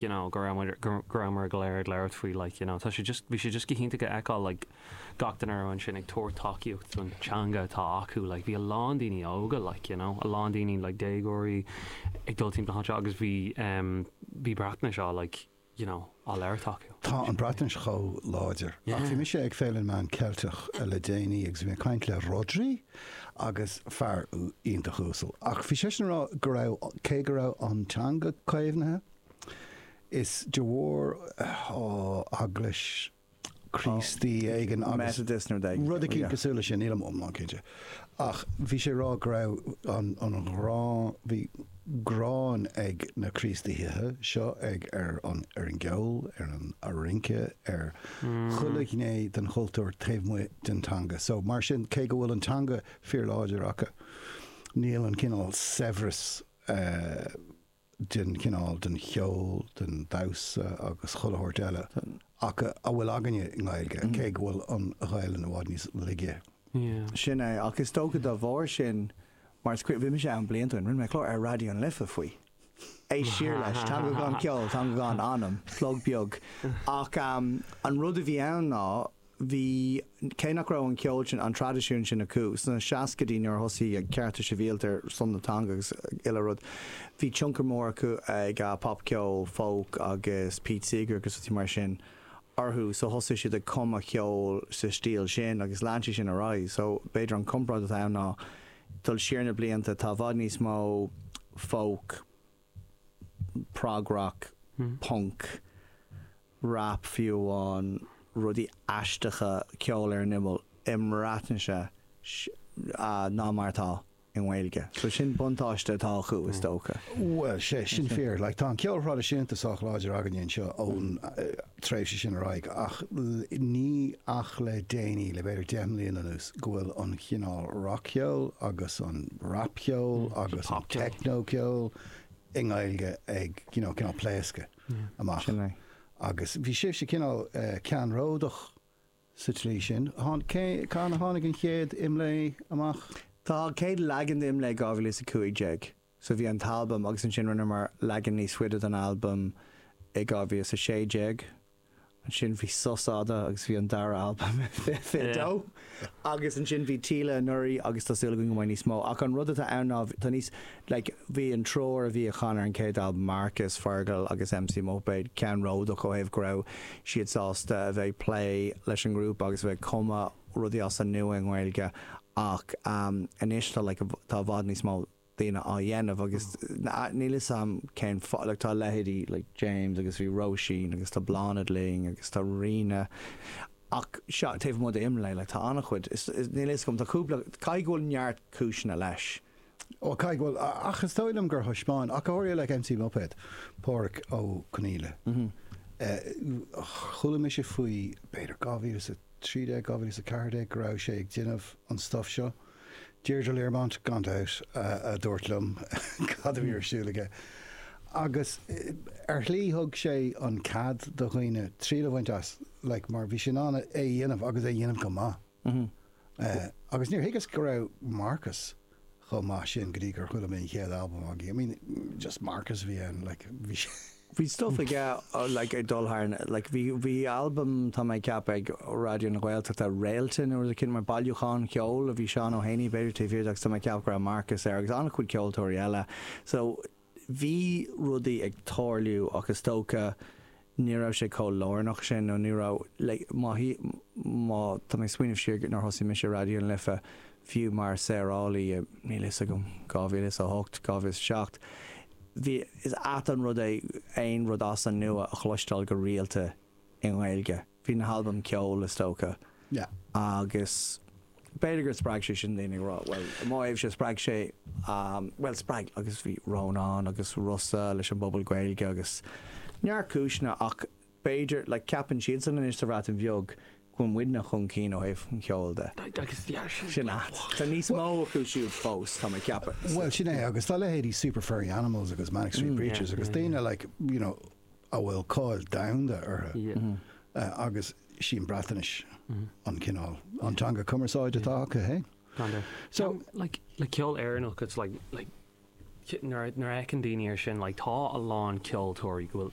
you know go raibh muid go rabhamar go léir ag labhairt faoi like you know tá sé just bhí sé just go hiontach a fheiceáil like gach duine a raibh ansin ag tabhairt tacaíocht don teanga atá acu like bhí a lán daoine óga like you know a lán daoine like déagóirí ag dul timpeall anseo agus bhí um, bhí Breatnais á like you know á labhairt acu. Tá an Bhreatnais chomh láidir ach bhí mise ag Féile na Meán Ceilteach le déanaí agus bhí mé ag caint le Rhodri agus fear iontach uasal ach bhí seisean a rá go raibh cé go raibh an teanga caomhnaithe is de bharr eaglais Críostaí éigin agus rud eicínt cosúil le sin níl mé iomlán cinnte ach bhí sé rá go raibh an an ghráin bhí gráin ag na Críostaithe seo ag ar an ar an gceol, ar an ar rince, ar chuile ghné den chultúr taobh amuigh den teanga. So mar sin cé go bhfuil an teanga fíorláidir acu níl an cineál saibhreas den chineál den cheol, den damhsa agus chuile shórt eile acu a bhfuil againne i nGaeilge cé go bhfuil an Ghaelainn i bhfad níos laige. Sin é. Ach is dócha dá bharr sin Mar is cuimhin, bhí mise ann blianta ó shin, rinne mé clár ar Raidió na Life faoi. Éist siar leis, teanga gan cheol, teanga gan anam, plug beag. Ach an rud a bhí ann ná, bhí, cé nach raibh an ceol sin, an traidisiún sin acu sna seascaidí nuair a thosaigh na Cearta Sibhialta ar son na teanga agus chuile rud, bhí tionchar mór acu ag popcheol, folk agus Pete Seeger agus rudaí mar sin. orthu so thosaigh siad ag cumadh ceoil sa stíl sin agus lean sé sin ar aghaidh so b'fhéidir an comparáid atá ann ná dul siar na blianta tá i bhfad níos mó folk, prog-rock, punk, rap fiú amháin, rudaí aisteacha ceoil ar an imeall i mBreatnais ná mar atá. i nGaeilge. So sin buntáiste atá acu is dócha. Bhuel, sea, sin fíor. Like, tá an ceol thraidisiúnta sách láidir againne anseo ón tréimhse sin ar aghaidh ach ní ach le déanaí, le b'fhéidir deich mbliana anuas, go bhfuil an cineál rac-cheol agus an rapcheol agus an techno-cheol i nGaeilge ag, you know, cineál ag pléascadh amach. Sin é. Agus bhí sibhse cineál ceannródach. sa tslí sin. Cathain a tháinig an chéad IMLÉ amach? Tá an chéad leagan d'IMLÉ i 2015 so bhí an t-albam agus ansin rinneamar leagan níos faide den albam i 2016. Ansin bhí sos fhada agus bhí an dara albam i 22 agus ansin bhí Fáilte anuraidh agus tá súil againn go mbeidh níos mó ach an rud atá ann ná tá níos like bhí an triúr a chan ar an chéad albam, Marcus, Fergal agus MC Muipéad, ceannródach ó thaobh go raibh siad sásta a bheith ag plé leis an ngrúpa agus a bheith ag cumadh rudaí as an nua i nGaeilge ach anois tá like tá i bhfad níos mó daoine á dhéanamh agus níl 'fhios a'm cén fáth like tá leithéidí like James agus bhí Róisín agus tá Bláthnaid Linn agus tá Ríona ach sea taobh amuigh d'Imlé like tá an-chuid is níl 'fhios a'm tá cúpla caithfidh go bhfuil neart cúiseanna leis. OK, bhuel, ach is dóigh liom gur thaispeáin ach go háirithe le MC Muipéad, Pádhraic Ó Conghaile, chuala mise faoi, b'fhéidir 2013, 2014, go raibh sé ag déanamh an stuff seo. Deirdre Learmont, gan dabht, a dúirt liom cad a bhí ar siúl aige. Agus ar shlí thug sé an cead do dhaoine triail a bhaint as, like, mar bhí sé in ann é a dhéanamh agus é a dhéanamh go maith. Agus níor thuigeas go raibh Marcus chomh maith sin go dtí gur chuala mé an chéad albam aige. I mean, just Marcus a bhí ann, like, bhí sé. Bhí stuff aige, like, ag dul thar na, like, bhí, bhí albam, tá mé ag ceapadh, ag Raidió na Gaeltachta, Réalta nó rud eicínt mar bailiúchán ceoil a bhí Seán Ó hÉanaí b'fhéidir taobh thiar de agus tá mé ag ceapadh go raibh Marcus air agus an-chuid ceoltóirí eile. So. bhí rudaí ag tarlú ach is dócha ní raibh sé chomh lárnach sin nó ní raibh like má má tá mé ag smaoineamh siar nuair a thosaigh mise Raidió na Life fiú mar saorálaí i níl fhios agam 2008 2007 bhí sé ait an rud é aon rud as an nua a chloisteáil go rialta i nGaeilge. Bhí na halbaim Ceol is dócha. Yeah. Agus b'fhéidir gur spreag sé sin daoine ag rá, bhuel, i mo thaobhse spreag sé, bhuel, spreag agus bhí Rónán agus Rossa leis an bpobal Gaeilge agus neart cúiseanna ach b'fhéidir, like, ceapann siadsan anois sa Bhreatain Bheag go bhfuil muidne chun cinn ó thaobh an cheoil de. Agus bhí ar sin. Sin ait. Tá níos mó acu siúd fós tá mé ceapadh. Bhuel sin é agus tá leithéidí Super Furry Animals agus Manic Street Preachers agus daoine like, you know, a bhfuil cáil domhanda orthu agus is í an Bhreatnais an cineál, an teanga chumarsáide atá acu féin. So, like, le ceol Éireannach, it's like, like, nuair a fheiceann daoine ar sin, like, tá a lán ceoltóirí go bhfuil